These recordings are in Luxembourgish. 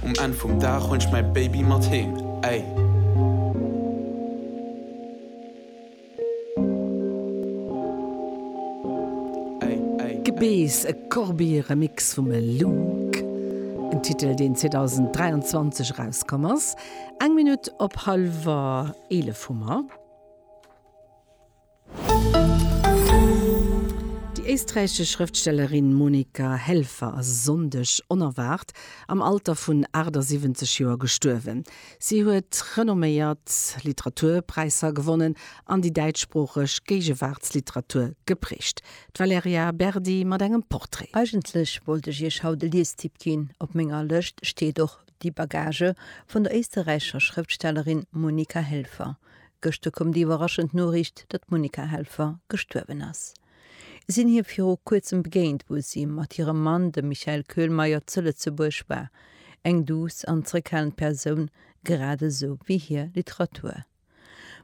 Um Enn vum Dag hunn ech mäi Baby mat heem, ey. Gebeess, e Corbiere-Mix vum Look, en Titel, deen 2023 erauskomm ass, eng Minutt op hallwer 11 hu mer. Déi éisträichesch Schrëftstellerin Monika Helfer ass e Sonndeg onerwaart am Alter vun 78 Joer gestuerwen. Si huet renomméiert Literaturpräisser gewonnen an déi däitschsproocheg Géigewaartsliteratur geprägt. D'Valerija Berdi mat engem Portrait. Eigentlech wollt ech iech haut e Liestipp ginn. Op menger Lëscht steet och Die Bagage vun der éisterräichescher Schrëftstellerin Monika Helfer. Gëschter koum déi iwwerraschend Noriicht, datt d'Monica Helfer gestuerwen ass. Ech sinn hir viru kuerzem begéint, wou si mat hirem Mann, dem Michael Köhlmeier, zu Lëtzebuerg war. Eng duuss an zeréckhalend Persoun, grad esou wéi hir Literatur.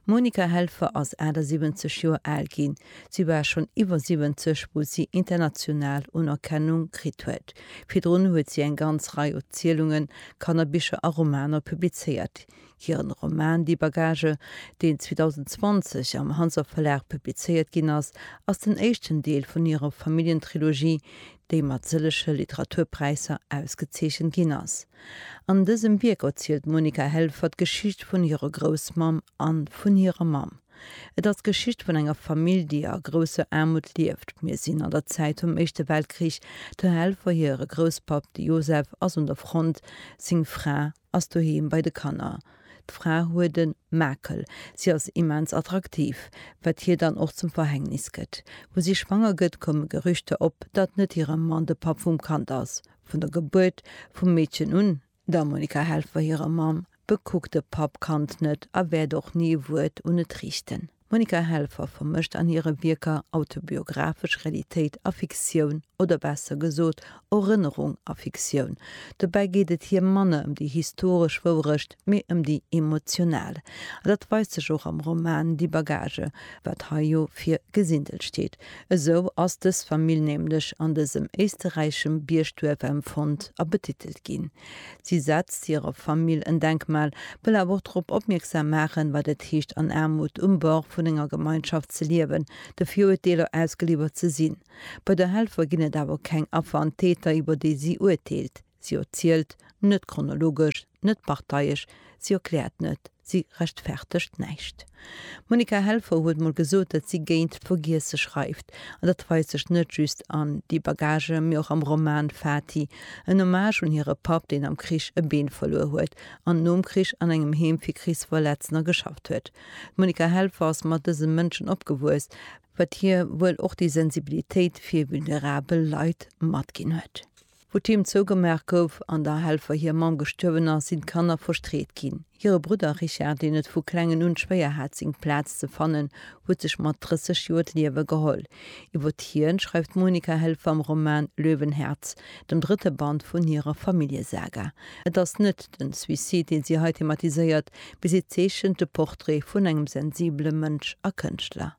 D'Monica Helfer ass 78 Joer al ginn. Si war schonn iwwer 70, wou si international Unerkennung kritt huet. Virdrun huet si eng ganz Rei Erzielungen, Kannerbicher a Romaner publizéiert. Hiren Roman Die Bagage, deen 2020 am Hanser Verlag publizéiert ginn ass, ass den éischten Deel vun hirer Familljentrilogie, déi mat sëllege Literaturpräisser ausgezeechent ginn ass. An dësem Wierk erzielt d'Monika Helfer d'Geschicht vun hirer Groussmamm an vun hirer Mamm. Et ass d'Geschicht vun enger Famill, déi a grousser Aarmut lieft. Mir sinn an der Zäit vum Éischte Weltkrich. Der Helfer hire Grousspapp, de Josef, ass un der Front, seng Fra ass doheem bei de Kanner. D'Fra huet e Makel, si ass immens attraktiv, wat hir dann och zum Verhängnis gëtt. Wou si schwanger gëtt, komme Gerüchter op, datt net hire Mann de Papp vum Kand ass. Vun der Gebuert vum Meedchen un, der Monica Helfer hirer Mamm, bekuckt de Papp d'Kand net a wäert och ni e Wuert un et riichten. D'Monika Helfer vermëscht an hire Wierker autobiographesch Realitéit a Fiktioun, oder besser gesot, Erënnerung a Fiktioun. Dobäi geet et hir manner ëm déi historesch Wourecht, mee ëm déi emotional. A dat weist sech och am Roman Die Bagage, wat hei jo fir Gesindel steet. Esou ass dës Famill nämlech an dësem éisteräischem Biergduerf empfonnt a betitelt ginn. Si setzt hirer Famill en Denkmal, wëll awer och drop opmierksam maachen, wat et heescht an Aarmut um Bord vun enger Gemeinschaft ze liewen, de Viruerteeler ausgeliwwert ze sinn. Bei der Helfer ginn et awer keng Affer an Täter, iwwer déi si urteelt. Si erzielt net chronologesch, net parteiesch, si erkläert net. Si rechtfertegt näischt. D'Monica Helfer huet mol gesot, datt si géint Vergiesse schreift. An dat weist sech net just an Die Bagage, mee och am Roman Fati, en Hommage un hire Papp, deen am Krich e Been verluer huet an nom Krich an engem Heem fir Krichsverletzner geschafft huet. D'Monica Helfer ass mat dëse Mënschen opgewuess, wat hir wuel och déi Sensibilitéit fir vulnerabel Leit matginn huet. Wou d'Heem zougemaach gouf an der Helfer hir Mamm gestuerwen ass, sinn d'Kanner verstreet ginn. Hire Brudder Richard, deen et vu klengen un schwéier hat seng Plaz ze fannen, huet sech mat 30 Joer d'Liewe geholl. Iwwert hien schreift d'Monika Helfer am Roman Löwenherz, dem drëtte Band vun hirer Familljesaga. Et ass net den Suicide, deen si hei thematiséiert, mee si zeechent de Portrait vun engem sensibele Mënsch a Kënschtler.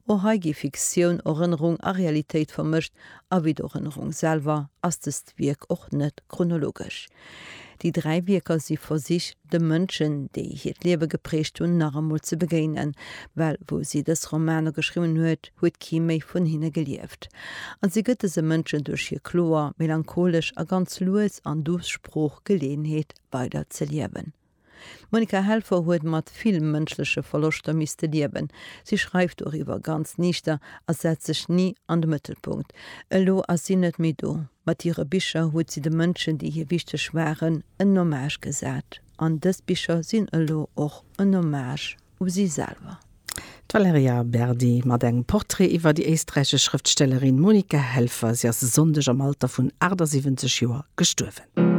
O hei gi Fiktioun, Erënnerung a Realitéit vermëscht, a wéi d'Erënnerung selwer ass dëst Wierk och net chronologesch. Déi dräi Wierker si Versich, de Mënschen, déi hiert Liewe geprägt hunn, nach emol ze begéinen, well wou si dës Romaner geschriwwen huet, huet kee méi vun hinne gelieft. A si gëtt dëse Mënschen duerch hir kloer, melancholesch a ganz lues an duuss Sprooch Geleeënheet, weider ze liewen. D'Monika Helfer huet mat vill mënschleche Verloschter misste liewen. Si schreift doriwwer ganz niichter a setzt sech ni an de Mëttelpunkt. Elo ass si net méi do. Mat hire Bicher huet si de Mënschen, déi hir wichteg waren, en Hommage gesat. An dës Bicher sinn elo och en Hommage u si selwer. D'Valerija Berdi mat engem Portrait iwwer déi éisträichesch Schrëftstellerin Monika Helfer. Si ass e Sonndeg am Alter vun 78 Joer gestuerwen.